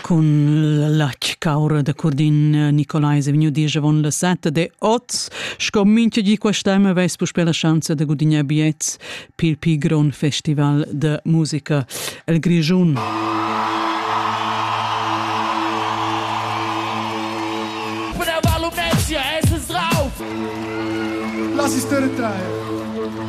Cun la caura da Curdin eh, Nicolai è vegniu diesch avon la sette de oz. Sco mincha di quest'anno aveis puspè la chance de gudignar biets pil pi gron festival de musica el Grischun. L'assistere trae.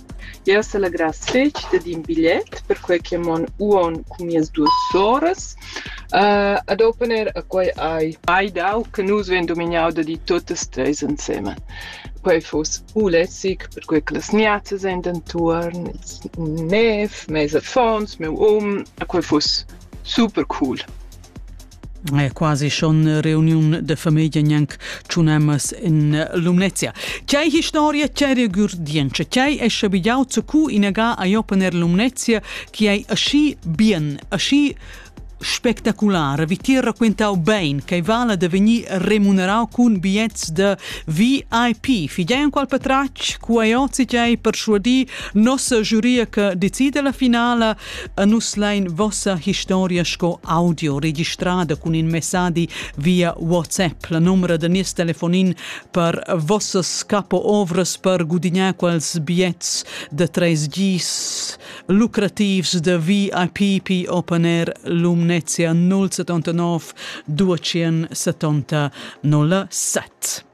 Jeu selegrass fetg dad in bigliet perquei che mon uonn cun mias duas soras ad opener e quei hai mai dau che nus vein dumignau da dir tuttas treis ensemen. Quei fuss u lässig perquei che las miazzas ein d'entuorn, ils nev, mes affons, miu um e quei fuss super cool. è quasi schon reuniun de famiglia gnanc tschunammas in Lumnezia. Chei historia, chei regurdientscha, chei è schabigliau zu cu inaga a Jopener Lumnezia, chi è aschi bien, aschi spectacular. Vi ti racquintau bein che vala de veni remunerau cun biets de VIP. Figei an qual patrac, cu ai ozi chei persuadi nossa giuria che decide la finala A nus lain vossa historia sco audio registrada cun in messadi via WhatsApp. La numera da nies telefonin per vossas capo ovras per gudignar quels biets de tres gis lucrativs de VIP Open Air Lumnezia 079 270 07.